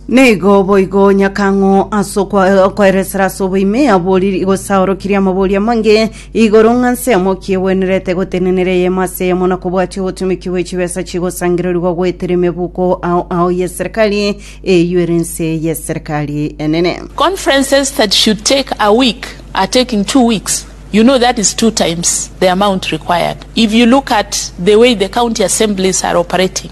Nigo boigo nyakang'o ase okwa- okoeresera ase oboime abori gosaorokirie amabori amange igoro ng'a nse yamoki egwenerete gotenenera eyemo ase eyemo na kobwatia obotumiki bwe chibesa chigosangererigwa goetera emebuko ao ao y'eserikari eyio ere nse y'eserikari enene. Conferences that should take a week are taking two weeks. You know that is two times the amount required. If you look at the way the county assemblies are operating,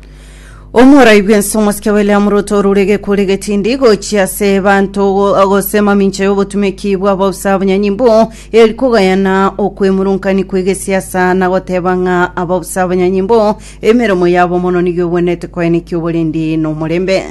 omorai bwense omosike william ruto orurege kuri getindi gochia ase banto go- gose mamincha y'obotumeki bw'abausa abanyanyimbo eri kogayana okwemurungani kw'egesiasa na goteba ng'a abausa abanyanyimbo emeremo yabo mono nigo egwenerete koenekia oborendi na omorembe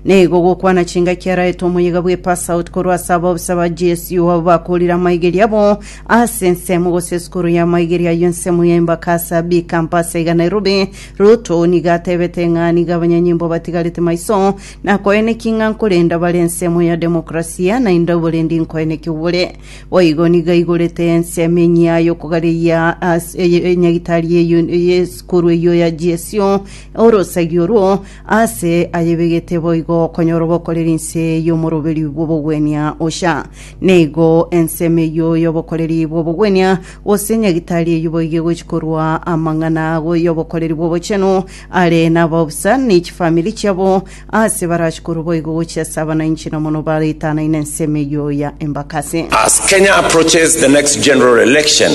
nigo gokwana chingaki araete omoyega bwe pass out korwa ase abausa ba gsu abo bakorire amaigeri abo ase ensemo gose esukuru y'amaigeri ayio ensemo ya embakasa b campus iga nairobi Ruto nigo atebete ng'a nigo abanyanyimbo batigarete maiso nakoeneki ng'a nkorenda bare ensemo ya demokrasia naende oborendi nkoeneki obore. Boigo nigo aigorete ensemo enyia y'okogareria ase eye- enyagitari y'eyu- y'esukuru eyio ya GSU orosegi orwo ase ayebegete boigo konyora obokoreri inse y'omoroberi bw'obogwenia. Osha nigo ensemo eyio y'obokoreri bw'obogwenia Gose Nyagitari oyio boigo egochia korua amang'ana abo y'obokoreri bw'obochenu are nabao bosa ne chifamiri chiabo, aase barachie korwa boigo gochia ase abanainche na mono baretanaine ensemo eyio ya Embakasi. As Kenya approaches the next general election,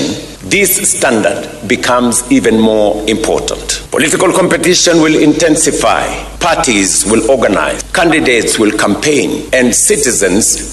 this standard becomes even more important. Political competition will intensify, parties will organise, candidates will campaign, and citizens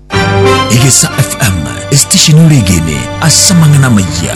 Egesa FM, esitesheni oregene ase amang'ana amayia.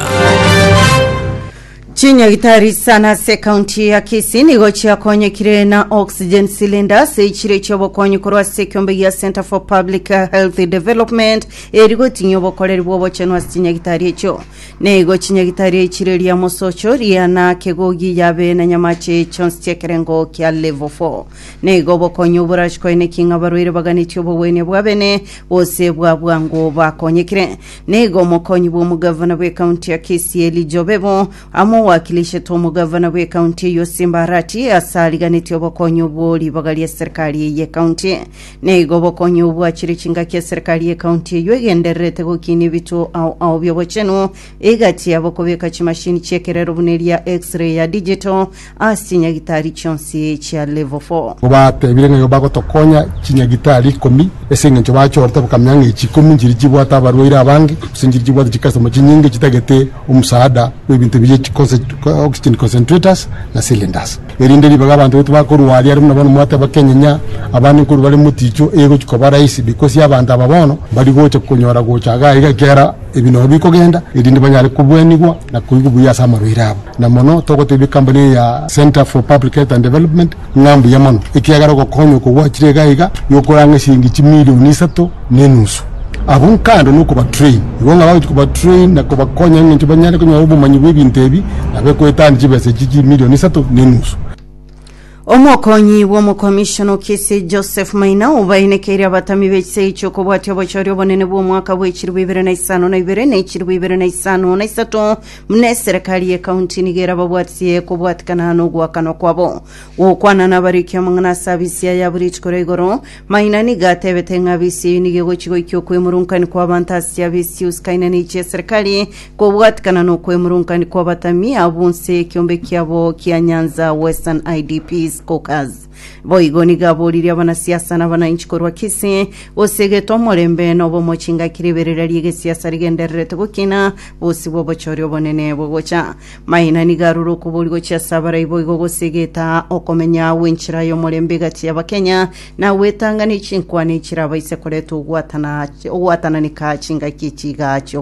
Chinyagitari sana ase kaunti ya Kisii nigo chiakonyekire na oxygen cylinders echire chiobokonyi korwa ase ekiombe gia Center for Public Health Development eri gotinyia obokoreri bw'obochenu ase chinyagitari echio. Nigo chinyagitari echire ria Mosocho, Riana, Kegogi, Yabe na Nyamache chionsi chi'ekerengo kia Level 4. na igo bokonya oborachi kwaino ki ng'a abarwaire baganetie obogwenia bw'abene gose bwa bwango bakonyekire. Na igo omokonyi bw'omogavana bw'ekaunti ya Kisii Eli Jobebo amo owakilishetwe omogavana bw'ekaunti eyio Simba Arati ase ariganetie obokonyi obwo ribaga ri'eserikari eye y'ekaunti. Na igo bokonya obwo achire chingaki eserikari y'ekaunti eyio egendererete gokinia ebituo ao ao bi'obochenu egati yabo kobeka chimashini chi'ekerero buna eria X-ray ya digital Ase chinyagitari chionsi chia level four. Kobatebire ng'a nigo bagotokonya chinyagitari ikomi, ase engencho bachorete bakamenya ng'a echi ikomi nchiria chibwate abarwaire abange, gose nchiria chibwate chicustomers chinyinge chitagete omosaada bw'ebinto ebi bie chiconse- oxygen concentrators na cylinders. Erinde ribaga abanto baito bakorwa aria, aria buna bono mwateba Kenya ng'a abande nkorwa bare moticho, egochia koba rahisi because abanto aba bono mbari gocha konyora gocha iga iga ekiagera Ebi nabio bikogenda erinde banyare kobuanigwa na koigwa buya ase amarwaire abo, na mono togotebia ekambuni eye ya Centre for Public Health and Development ng'a mbuya mono, ekiagera ogokonywa okwo gwachire iga iga nokore ang'e chiringi chimilioni isato na enusu. Abwo nkando nokobatrain igo ng'a bagochia kobatrain na kobakonya eng'encho banyare konyora obomanyi bw'ebinto ebi, nabo ekoetania chibesa echi chimilioni isato na enusu. Omokonyi bw'omokomishona o Kisii Joseph Maina obainekeirie abatami b'echisegi chi'okobwatia obochori obonene bw'omwaka bw'echiribu ibere na isano na ibere na echiribu ibere na isano na isato buna eserekari y'ekaunti nigo erababwatie kobwatikana n'ogoakanwa kwabo gokwana nabariki amang'ana ase abisia ya buri rituko ria igoro Maina nigo atebete ng'a bisi eyio nigo egochi goikia okwemurunkanio kw'abanto ase chia bisi chiusukaine ne chia eserikari, kobwatikana na okwemurunkanio kw'abatami abo bonsi ekiombe kiabo kia Nyanza Western IDPs Caucus. Boigo nigo aboririe abanasiasa na abananchi korwa Kisii, gose egete omorembe na obomo chingaki riberera ri'egesiasa rigendererete gokina, bosibwa obochori obonene bogocha. Maina nigo arure okobori gochia ase abaraibo igo gose egetaa okomenya gw'enchera y'omorembe egati y'Abakenya na gwetang'ana echinkwana echirabaise koreta ogwatana ogwatananeka chingaki chiga chiogo